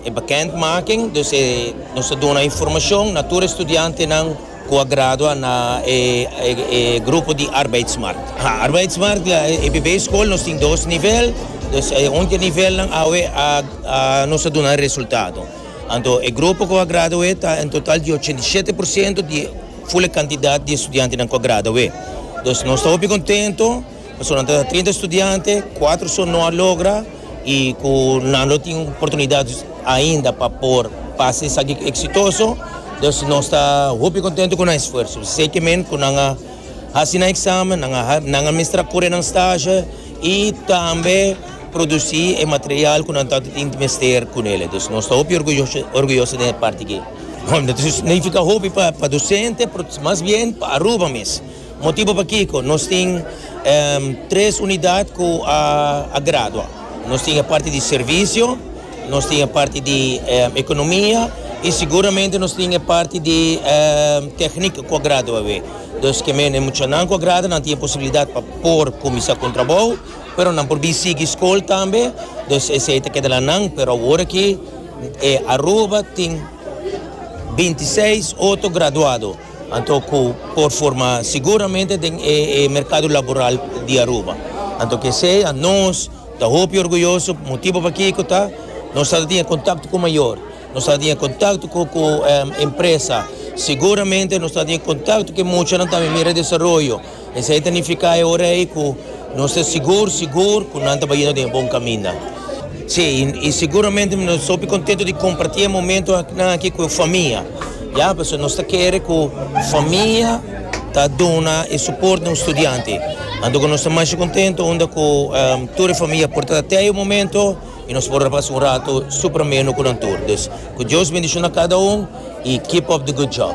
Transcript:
E bekendmaking, dus e, nos ta duna informashon na tur e studiantenan ku a gradua na e grupo di Arbeidsmarkt. Ha, Arbeidsmarkt la e primer skol, nos tin dos nivel, dus e un di e nivelnan awe a a nos a duna e resultado. Anto e grupo ku a gradu'é ta en total di ochenta i shete por siento di ful e kantidat di e studiantenan ku a gradu'é. Dus nos ta hopi kontento. Esonante ta trinta studiante, kuater son no a logra i ku nan lo tin oportunidat ainda pa por pasa esaki eksitoso. Dus nos ta hopi kontentu ku nan esfuerso. Seki men ku nan a hasi nan eksamen, nan a nan a mester a kore nan stashe i tambe produsi e material ku nan tantu tin mester ku nele. Dus nos ta hopi orguyoso orguyoso den e parti aki. No ta signifika hopi pa dosente, mas bien pa Aruba mes. Motibu pakiko nos tin tres unidat ku a gradua. Nos tin e parti di servisio, nos tin e parti di ekonomia i siguramente nos tin e parti di teknik ku a gradua awe. Dus ke mene muchanan ku a gradua nan tin e posibilidat pa por kuminsá ku un trabou, pero nan por bin sigui skol tambe, dus esei ta keda la nan. Pero awor aki Aruba tin binti seis otro graduado. Anto cu por forma siguramente den e mercado laboral di Aruba. Anto cu esey a nos ta hopi orguyoso, motibo pakico ta nos sa ta tin e contacto cu mayor, nos sa ta tin e contacto cu cu empresa, siguramente nos ta tin e contacto cu e muchanan tambe mira e desaroyo. Esei ta nifiká e ora ei ku nos ta sigur sigur ku nan ta bayendo den e bon kaminda. Sí, i siguramente nos ta hopi kontentu di kompartí e momentunan akí ku e famia, ya, pasobra nos ta kere ku famia ta duna e suport na un studiante. Anto ku nos ta masha kontentu unda ku tur e famia por ta tei un momento i nos por a pasa un ratu super ameno ku nan tur. Dus, ku Dios bendishona kada un i keep up the good job.